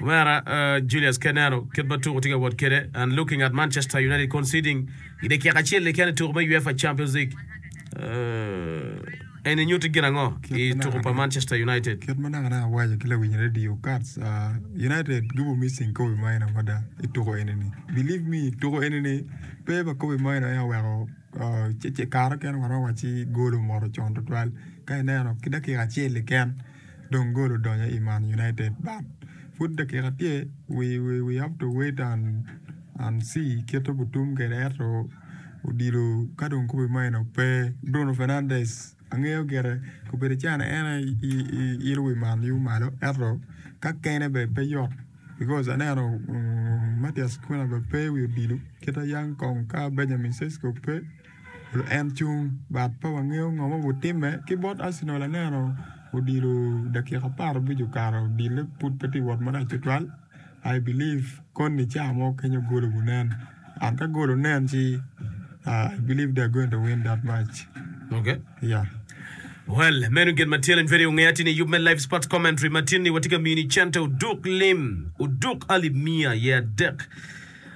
Omera Julius Ke neno kit ma tuku tye ka wot kwede and looking at Manchester United conceding i dakika acel keken i tuku me UEFA Champions League, uh, eni nyuto gin ango i tuku pa Manchester United? Kit ma naka naka awaco ki lawiny radio Kats, uh, United gibo missing Kobe Maino mada i tuku eni ni. Believe me, tuku eni ni pe pa Kobe Maino en aye oweko, uh, kare okene waromo wacci golo omoto con twatwal. Ka ineno ki dakika acel keken, dong gol odonyo i Man United but pud dakika tye we have to wait and see kit ma gutum kwede ento odilo ka dong kobbe ma eno pe Bruno Fernandes angeyo gire obedo calo en aye ilo wi Man U malo ento ka kene bene pe yot because aneno Matias Cunha bene pe i wi odilo kita Yang Kong ka Benjamin Sesko pe. En cung but pe wangeyo ngo ma gutimme ki bot Arsenal aneno odilo dakika apar abic okato odile pud pe tye wot marac tutwal I believe koni ca mo kenyo gol obi nen and ka gol onen ci I believe they are going to win that match yeah.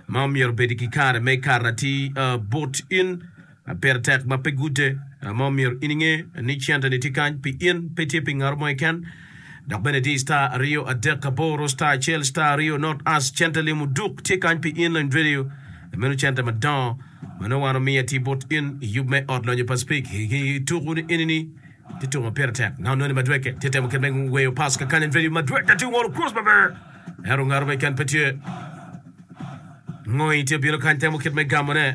ma omyero obedi ki kare me kato atir bot in, pire tek ma pe gute, ma omyero in inge ni cente-ni tye kany pi in, pe tye pi ngato mo keken. Dok bene di star aryo adek aboro star acel star aryo not as cente limo duk tye kany pi in lony radio meno cente madongo ma nongo wan omiyo atir bot in i yub me ot lonyo Pacific ki tuku ni eni ni Tye tuko ma pire tek, ngat onongo ni Madueke tye temo kit me weyo pass kekany en vedio Madueke tye ngolo cross maber ento ngato ma keken pe tye. Ngoyi tye bino kany temo kit me gamone.